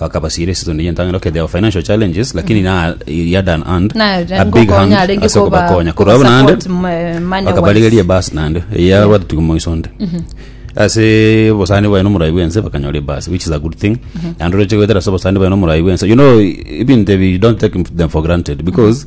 Akabasiira eseason eye entang'ani, okay there were financial challenges lakini na yard and hand Na- a big ngokonya hand arenge ase koba- okobakonya korwa koba buna ande support mo- money bakabarigeria wise. ebasi naende eya abatutuki moiso onde ase obosani bwaye na omorai bwense bakanyora ebasi which is a good thing naende oroche goetera ase obosani bwaye na omorai bwense you know ebinto ebi you don't take them for granted because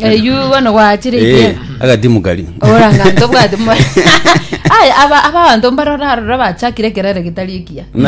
Eywo bono gwachire Eh, ikiaga. agatimu kari Oranga ntobwate mwa. Aya aba abanto mbarora arora bachakire kerere gitari ekiya.